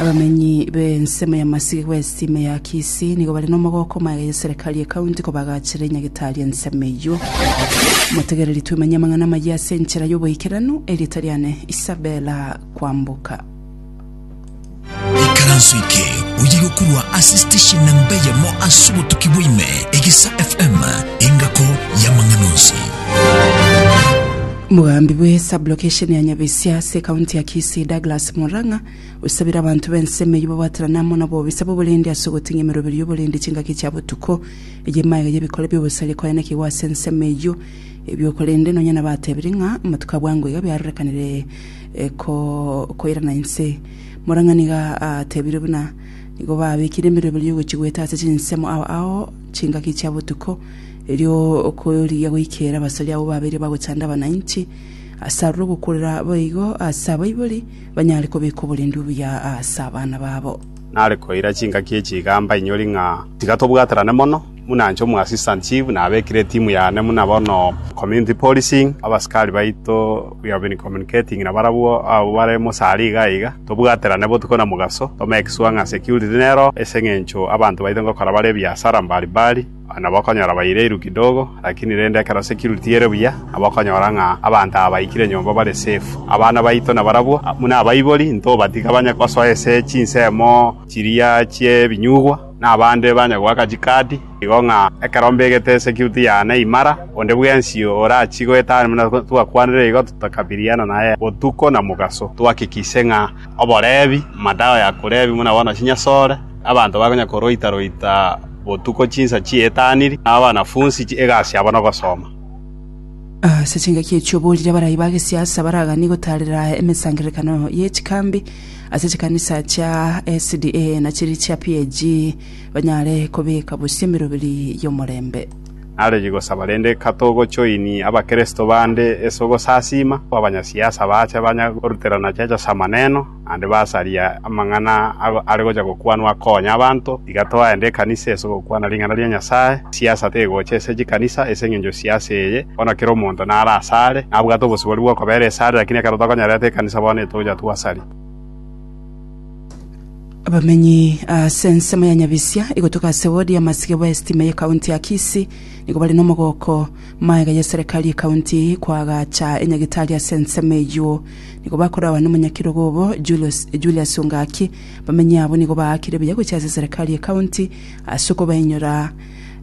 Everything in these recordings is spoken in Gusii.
Abamenyi b'ensemo y'amasiko bw'esisimi ya Kisii nigo bare n'omogoko magega y'eserekari ye county kobagachera enyagetari y'ensemo eyio. Motegereri twemenye amang'ana amayia ase enchera y'oboikeranu, erieta riane Isabella Kwamboka. Ikaranso eke oye gokorwa ase station namba eyemo ase obotuki bwaime, Egesa FM, engako y'amang'ana onsi. Mogambi bwe sublocation ya Nyabisia ase ekaunti ya Kisii Douglas Murang'a osabire abanto b'ensemo eyio babwaterane amo nabobisa b'oborendi ase ogoting'a emeroberi y'oborendi chingaki chia botuko. Eye emaiga y'ebikore bi'obosaria koyanekigwa ase ensemo eyio ebio korende nonya nabatebire ng'a amatuko abwango iga biarorekanire koirana inse. Murang'a nigo atebire buna nigo babekire emeroberi y'ogochia goeta ase chinsemo ao ao chingaki chia botuko. Erio okoorigia goikeera abasore abwo babere bagochanda abananchi ase aroro ogokurera boigo ase abaibori, banyare kobeka oborendi obuya ase abana babo. Nare koira chingaki echi igamba inyori ng'a tiga tobwaterane mono, buna inche omoassistant chief nabekire etimu yane buna bono community policing, abasikari baito we have been communicating nabarabwo abwo bare mosari iga na iga, tobwaterane botuko na mogaso, to make sure ng'a security nero ase eng'encho abanto baito ngokora bare ebiasara mbari mbari. Nabo okonyora baireiru kidogo, lakini rende ekero security ere buya, nabo okonyora ng'a abanto aba baikire nyomba bare safe. Abana baito nabarabwo, buna abaibori, ntobatiga banye gosoa ase chinsemo chiria chi'ebinyugwa, na abande banye goaka chikaadi, igo ng'a ekero mbegete security yane imara, onde bwensi orachie goetania buna twakwanire igo, tokabiriana naye botuko na mogaso, twahakikishe ng'a oboreebi, madawa ya koreebia buna bono chinyasore, Abanto bakonya koroita‐roita botuko chinsa chi'etaniri, na abanafunsi egasi yabo nogosoma. Ase chingaki echi oboorire abarai ba gesiasa baraganie gotaarera emesangererekano ye chikambi ase chikanisa chia SDA na chiria chia PAG banyare kobeka bosio emeroberi y'omorembe. Naregi gosaba rende katogochoini Abakristo bande ase ogosasiima, abanyasiasa baache banya goruterana chiacha ase amaneno, naende basaria amang'ana are gocha gokwanwa akonya abanto, iga twaende ekanisa ase ogokwana ring'ana ria Nyasae. Siasa tegocha ase chikanisa, ase engencho siasa eye, bono kera omonto nare asare, nabwate obosibori bw'okobera esare, lakini ekero tokonyarerete ekanisa bono etocha twasari. Abamenyi ase ensemo ya Nyabisia igotoka ase wodi ya Masigebo y'esitima y'ekaunti ya Kisii nigo bare n'omogoko. Magega ya eserekari y'ekaunti eye koagacha enyagitari ase ensemo eyio. nigo bakoragwa nomonyakerogo obo Julius, Julius o Ngaki. Bamenyi abo nigo baakire buya gochia ase eserekari ye county ase okobainyora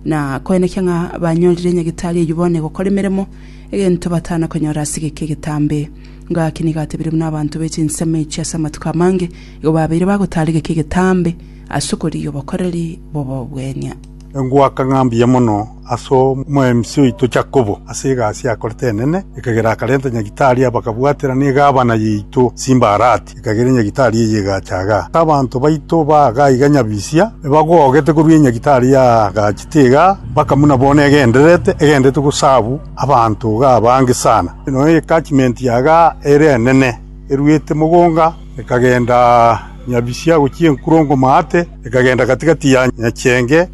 na koenekia ng'a banyorire nyagetari eyio bono egokora emeremo, egento batana konyora ase egeka egetambe. Ngaki nigo atebire buna abanto be chinsemo echio ase amatuko amange igo babeire bagotaara egeka egetambe ase okorigia obokoreri bw'obobuenia. Engwaka ng'a mbuya mono ase omwemisi oito Yakobo ase egasi akorete enene, ekagera akarenta nyagitari aya bakabwatera negavana yaito Simbarati, ekagera enyagitari eye egacha iga. Abanto baito baaga iga nyabisia, ebagogete korwa enyagitari yaagachete iga, mpaka buna bono egendererete, egendererete gosabu abanto iga abange sana. Nonya attachment yaga ere enene eruete mogonga. Ekagenda nyabisia gochia enkurongo maate, ekagenda gati‐gati ya nyacheenge,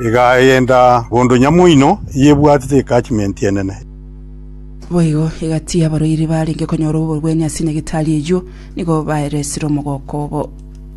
egagenda bondo nyamoino eyebwatete ecachimenti enene. Boigo egatiia abarwaire baarenge konyora oborwani ase nyagetari eyio, nigo baeresire omogoko obo.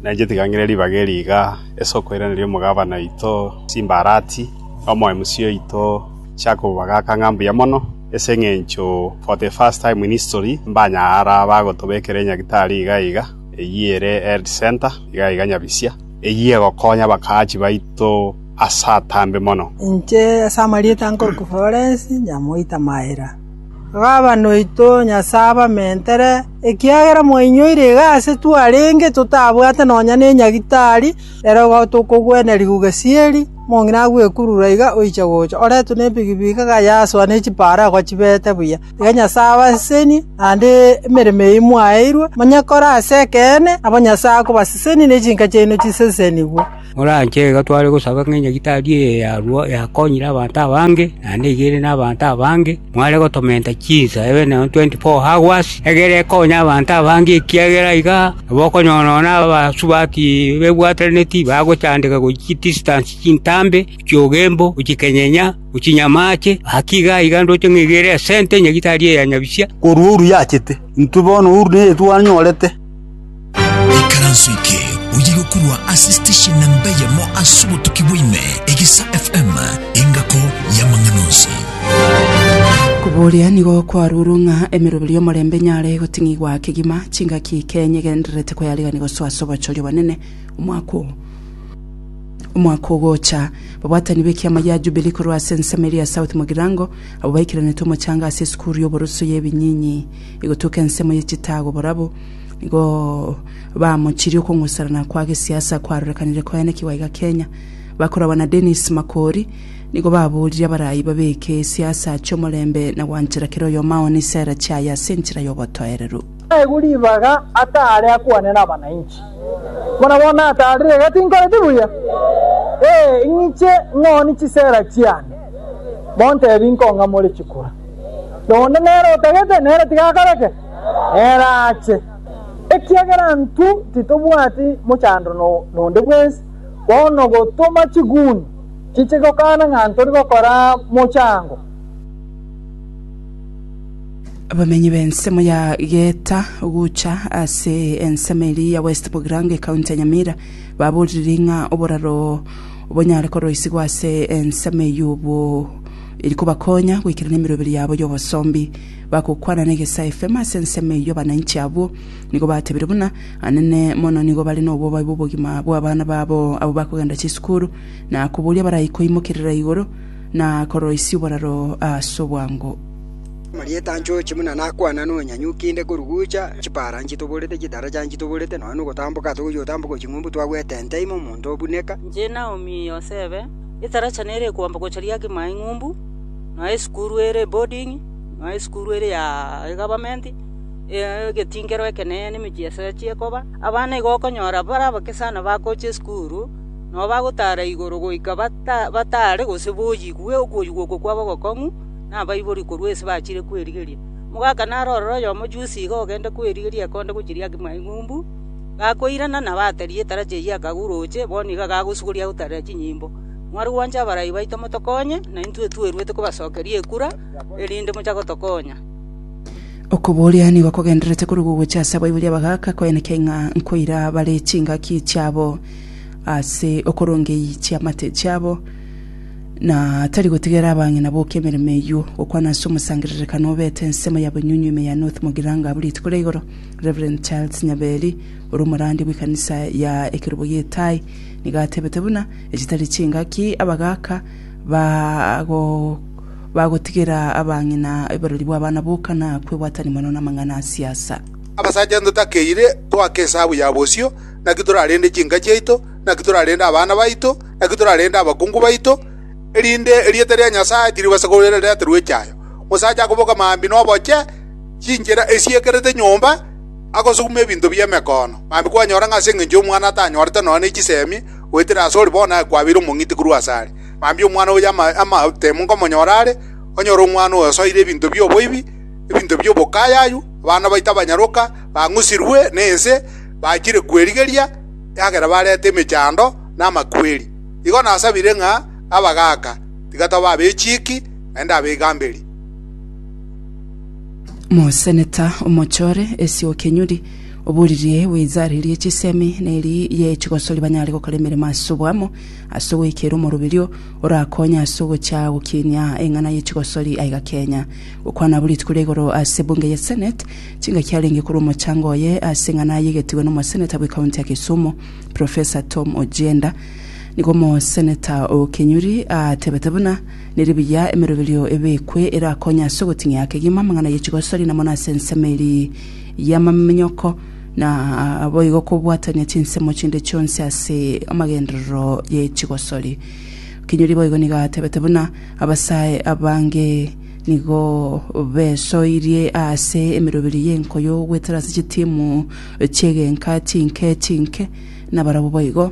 Nainche tigang'ire ribaga eri iga, ase okoiraneria omogabana oito Simbarati, omoemisia oito Jakobo bagakang'a mbuya mono. Ase engencho for the first time in history mbanyara bagotobekera enyagitari iga iga, eyio ere health centre iga iga nyabisia, eyio egokonya abakaachi baito ase atambe mono. Inche ase amarieta nkoruka Florence nyamoita Maira. Baba noito Nyasae abamentere, ekiagera mwainyoire iga ase twarenge totabwate nonya nenyagitari, Ere ogoeta okogwenerigwa ogesieri, omong'ina agwekurura iga oiche gocha, oretwe nebigi-bigi akayasoa ne chipaaro agochibete buya. Iga Nyasae abasesenie, naende emeremo eyio mwaeirwe, manye kore ase ekeene, nabo Nyasae akobasesenia ne chinka chiaino chisesenigwe. Moranche iga tware gosaba ng'a Nyagetari eye yarua yakonyire abanto abange, naende iga ere nabanto abange. “Mware gotomenta chinsa emeneno tweenti foo agwo aase, egere ekonye abanto abange, ekiagera iga nabo okonyora nonya abasubati bebwatanetie bagochandeka gochia chidisitansi chintambe, chiogembo, gochikenyenya, gochinyamache. Gaki iga aiga ndoche ng'egere esente nyagitari eya nyabisia, korwa oria yachete, intwe bono oria neyetuanyorete.” Ekaranso eke oyegokorwa ase station namba eyemo ase obotuki bwaime, Egisa FM, engako y'amang'ana onsi. Koboria nigo kwarurwe ng'a emeroberio y'omorembe enyare goting'igwa kegima, chingaki kenya egendererete koyarigia gosoa ase obochori obonene omwaka oo. Omwaka ogocha, babwatani b'ekiama gia Jubilee korwa ase ensemo eria South Mugirango abwo baikaranete omochanga ase esukuru y'oboroso y'ebinyinyi egotuka ensemo ye chitaago borabu, nigo bamochirie okong'userana kwa gesiasa kwarorekanire koenekigwa iga Kenya. Bakorabwa na Dennis Makori nigo baboorire abaraai babeke esiasa ache omorembe na gwanchera kera oyomo aone isera chiaye ase enchera y'obotoereru. Naigwe ribaga ata are akwane nabananchi? Buna bono natarire iga tinkoreti buya? Ee, ing'iche ng'ooni chisera chiane, montebi nkong'amore chikura. Nonde nere otagete, nere tiga akoreke? Ere ache, ekiagera intwe titobwati mochandro nonde bwensi, bono gotoma chiguni chiche gokana ng'a ntori gokora mochango. Abamenyi b'ensemo ya Geeta gocha ase ensemo eria ya West Bugirango ekaunti ya Nyamira baboririe ng'a oboraro bonyare koroisigwa ase ensemo eyio obo eri kobakonya goikerania emeroberi yabo y'obosombi. Bagokwana negesa efemo ase ensemo eyio abananchi abwo nigo batebire buna anene mono nigo bare nobobabe bw'obogima bw'abana babo abwo bakogenda chisukuru na koboria barai koimokerera igoro na koroisia oboraro ase obwango. Amarieta anchoche buna nakwana nonyanyuki inde korugucha chipara nchitoborete chitaracha nchitoborete nonya nogotamboka togochia gotamboka ching'umbu twagwete ente ime omonto obuneka. Inche Naomi Yosebe, etaracha nere ekoamba gocha riake mae ing'umbu. nonya esukuru ere eboding'i, nonya esukuru ere ya egavamenti, egetingero ekenene na emechie ase achie koba, abana igo okonyora bare abake sana bagocha esukuru, nonya bagotara igoro goika bata batare gose boyigwe okoyigwa oko kwabo ogokong'u na abaibori korwa ase bachire kwerigeria. Omogaka naro ororo oyomo juzi iga ogende kwerigeria ekonde gochiria ake maigumbu, gakoirana nabo ataria etarachi eyio akaguroche, bono iga gagosuguria agotarera chinyimbo. Mwarigwanche abarai baito motokonye, naintwe tweruete kobasokeria ekura, erinde mochake gotokonya. Okoboria nigo kogendererete korwa gogocha ase abaiboria abagaaka koenekia ing'a nkoira bare chingaki chiabo ase okorongei chiamate chiabo, na tari gotigera abang'ina boka emeremo eyio, gokwana ase omosangererekano obete ensemo ya bonyunyu ime ya North Mogiranga abwo rituko ria igoro, Rev. Charles Nyaberi, ore omorandia bw'ekanisa ya Ekerogo Gi'Etaai, nigo atebete buna, Echitari chingaki abagaaka bagotigera abang'ina oborori bw'abana boka na kwebwatania mono namang'ana a siasa. Abasacha ntotakeire toaka esabu ya bosio, naki torarende chinka chiaito, naki torarende abana baito, naki torarende abakungu baito, erinde erieta ria Nyasae tiribasa koreterwa echayo. Omosacha akoboka maambia noboche chinchera esiekerete nyomba, agosuguma ebinto bi'emekoono, maambia kwanyora ng'a ase engencho y'omwana atanyorete nonya ne chisemi, Goetera asore bono akwabeire omong'iti korwa asare. Mambia omwana oye amatemo nkomonyora are, onyore omwana oyo osoire ebinto bi'oboibi, ebinto bi'obokayayu, abana baito abanyaroka, bang'usirwe nense, bachire kwerigeria, eagere barete emechando na amakweri. Igo nasabire ng'a, Abagaaka, tiga tobe abechiiki, naende abaigamberi. Moseneta omochore, esia okenyuri. Oboriri bw'ezareria chi'esemi neri ye chigosori banyare gokora emeremo ase oboamo, ase ogoikera omoroberio orakonye ase ogocha gokinia eng'ana ye chigosori aiga Kenya. Gokwana abwo rituko ria igoro ase ebunge ye Senate, chingaki arenge korwa omochango oye ase eng'ana ayegetigwe nomoseneta bwe county ya Kisumu, Professor Tom Ojienda. Nigo omoseneta o Kinyuri atebete buna neri buya emeroberio ebekwe erakonye ase ogoting'ia kegima amang'ana ye chigosori namo nase ensemo eri y'amamanyoko, na boigo kobwatania chinsemo chinde chionsi ase amagenderero ye chigosori. Kinyuri boigo nigo atebete buna abasae abange nigo besoirie ase emeroberi y'enkoyo goetera ase chitimu chi'egenka chinke chinke, nabarabwo boigo.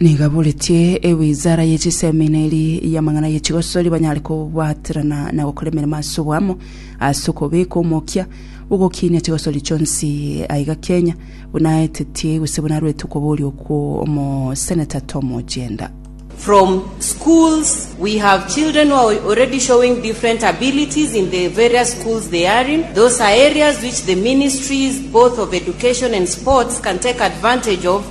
Nigaboretie ewizara ye chiseminari y'amang'ana ye chigosori banyare kobwaterana na gokora emeremo ase oboamo ase okobeka omokia bw'ogokinia chigosori chionsi aiga Kenya, buna aetetie gose buna arwete okoboria okwo Omoseneta Tom Ojienda. From schools we have children who are already showing different abilities in the various schools they are in. Those are areas which the ministries both of education and sports can take advantage of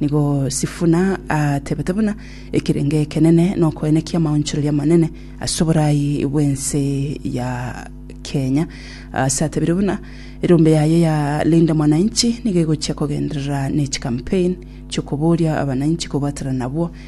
Nigo Sifuna atebete buna ekerenge ekenene nokoenekia amaonchoreria amanene ase oboraai bw'ense ya Kenya, ase atebire buna erombe yaye ya Linda Mwananchi nigo egochia kogenderera ne chikampeni chi'okoboria abananchi kobwatana nabwo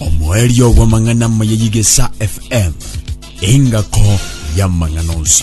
omoerio bw'amang'ana amaya y'Egesa FM, engako y'amang'ana onsi.